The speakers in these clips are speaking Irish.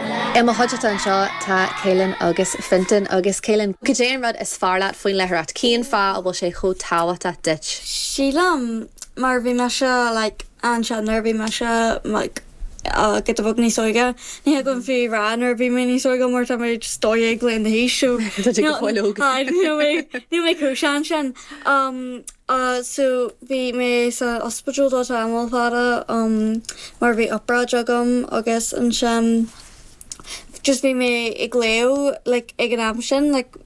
I mo chuideachta anseo tá Caelan agus Fintan. Agus Caelan, cad é an rud is fearr leat faoin léitheoireacht? Cén fáth a bhfuil sé chomh tábhachtach duit? Sílim mar bhí mise like ansin nuair a bhí mise like giota beag níos óige, ní thig liom fiú rá nuair a bhí mé níos óige mar tá mé just dó dhéag bliain d'aois so Tá tú go fóill óg. níl mé níl mé chomh sean sin. so bhí mé sa ospidéal do tamall fada um mar bhí obráid agam agus ansin just bhí mé ag léamh like ag an am sin like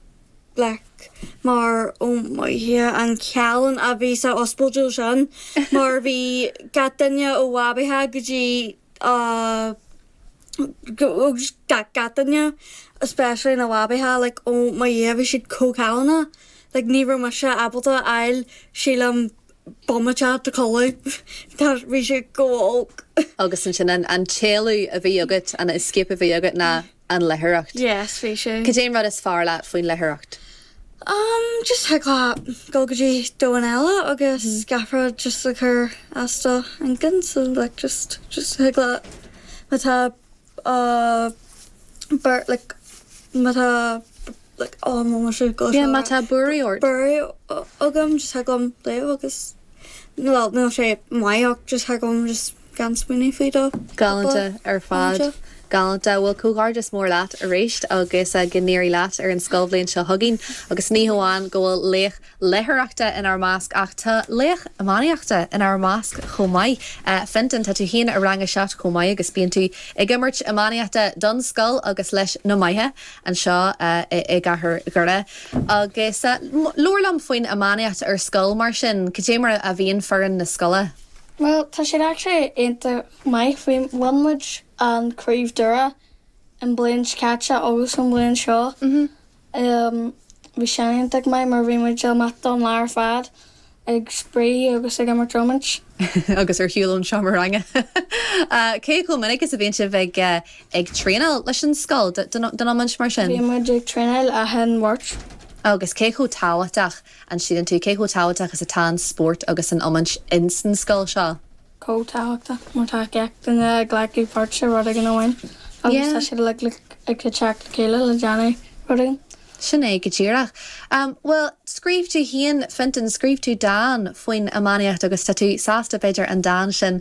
like mar ó mo Dhia an callán a bhí sa ospidéal sin mar bhí gach duine ó bhabaithe go dtí uh gach duine, especially na babaithe, like ó mo Dhia bhí siad chomh callánach, like ní raibh mise ábalta a fháil sílim bomaite de chodladh mar, bhí sé chomh olc. Agus ansin an, an t-éalú a bhí agat, an escape a bhí agat ná an léitheoireacht. Yes, bhí sé. Cad é an rud is fearr leat faoin léitheoireacht? Umm, just thig leat dul go dtí domhan eile agus gach rud just a chur as do inchinn, so like just, just thig leat má tá beirt like, má tá like, oh mo mhuise go Yeah, má tá buairí ort. buairí agam just thig liom léamh agus, bhuel níl sé maith ach just thig liom just. gan smaoineamh faoi do phobal náisiúnta. Galánta ar fad. Galánta bhuel comhghairdeas mór leat arís agus go n-éirí leat ar an scoilbhliain seo chugainn. Agus ní hamháin go bhfuil laoch léitheoireachta inár measc ach tá laoch iománaíochta inár measc chomh maith. Fintan, tá tú féin i rang a seacht chomh maith agus bíonn tú ag imirt iománaíochta don scoil agus leis Na Magha anseo i gcathair Dhoire. Agus labhair liom faoin iománaíocht ar scoil mar sin. Cad é mar a bhíonn foireann na scoile? Bhuel, tá siad actually iontach maith. Bhí, bhain muid an craobh Doire an bliain seo caite agus an bliain seo. Bhí sin iontach maith mar bhí muid amach don lá ar fad ag spraoi agus ag imirt iomáint. Agus ar shiúl ón seomra ranga. Cé chomh minic is a bhíonn sibh ag, ag traenáil leis an scoil don, don iomáint mar sin? Bíonn muid ag traenáil achan Mháirt. Agus cé chomh tábhachtach An síleann tú cé chomh tábhachtach is atá an spórt agus an iomáint insan scoil seo? chomh tábhachtach mar tá gach duine ag glacadh páirt sa rud éigin amháin agus tá siad uilig ag teacht le chéile le déanamh rud éigin. Sin é go díreach. Bhuel, scríobh tú féin, Fintan, scríobh tú dán faoin iománaíocht agus tá tú sásta, b'fhéidir, an dán sin